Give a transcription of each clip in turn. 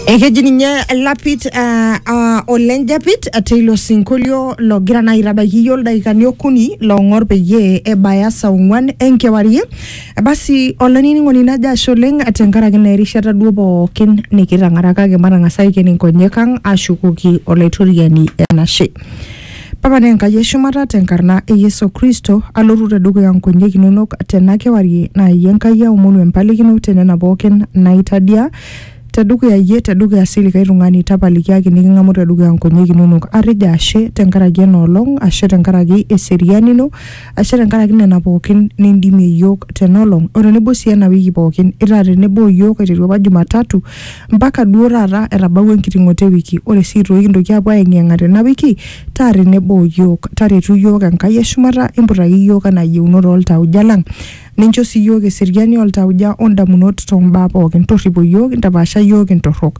ekeji ninye lapit uh, uh, olenjapit teilo sinkolio logira naa aitabaiki iyie oldakikani okuni loong'or peyie ebaya saa ong'uan enkewarie basi olainining'oni najo ashe oleng tenkaraki naa erishata duo pookin nikitang'ara kake matang'asa aiken inkonyek ang ashukoki olaitoriani enashe Pakana Enkai e shumata te nkarna e Yesu Kristo, alotu te dukuya nkonyek inonok tena kewarie naa iyie Enkai aomonu empalikino te nena pookin naitadia te dukuya iyie te dukuya sii likae tung'ani tapalikiaki niking'amu te dukuya nkonyek inonok. Atejo ashe te nkaraki ena olong, ashe te nkaraki eseriani ino, ashe te nkaraki nena pookin nindimie iyiook tena olong o tenebo sii ena wiki pookin. Itaa tenebo o iyiook aiteru apa Jumatatu Mpaka duo taata etabawua enkiting'oto e wiki. Ore sii toi kintoki aapuo aayeng'iyeng'a tena wiki, taa tenebo o iyiook. Taretu iyiook Enkai e shumata, imputaki iyiook anaa iyieunot oo ltauja lang. Nincho sii iyiook eseriani oo ltauja o ndamunot too mbaa pooki. Torripo iyiook, intapaasha iyiook intorrok.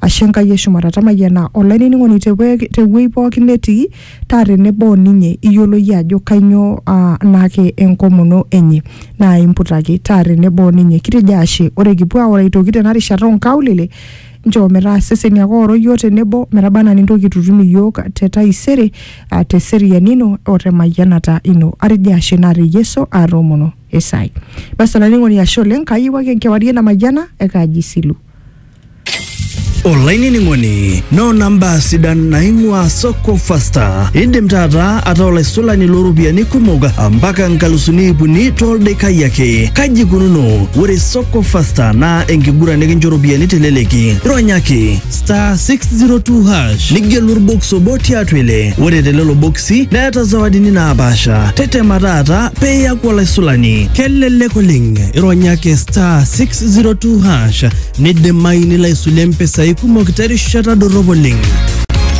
Ashe Enkai e shumata. Tamayiana olainining'oni te wuei pooki netii. taa tenebo o ninye, iyiolo iyie ajo kainyoo aa naake enkomono enye. Naa imputaki, taa tenebo o ninye. Kitejo ashe, ore kipuo aoro aitoki tena rishata oo nkaulele, nchoo metaa iseseni ake ooro iyiook tenebo metaba anaa nintoki aitutum iyiook te taisere aa te seriani ino o te mayianata ino. Atejo ashe naa te Yesu aatoomono e saai. Basi olainining'oni ashe oleng, kaayieu ake enkewarie namayiana e Kaji Silu. olainining'oni noona mbaa sidan naing'ua soko fasta indim taata ataa olaisulani looropiyiani kumok mpaka nkalusuni iip uni tooldaikai ake kaji ikununo ore soko fasta naa enkiguran nikincho ropiyiani teleleki ronyaki star 602 hash nigelu orbox obo tiatua ile ore telelo boksi neeta zawadini naapaasha tetema taata pee iyaku olaisulani kelelek oleng ironyaki star 6 0602 hash nidimayu nilo aisulie mpisai kumok terishata dorrop oleng.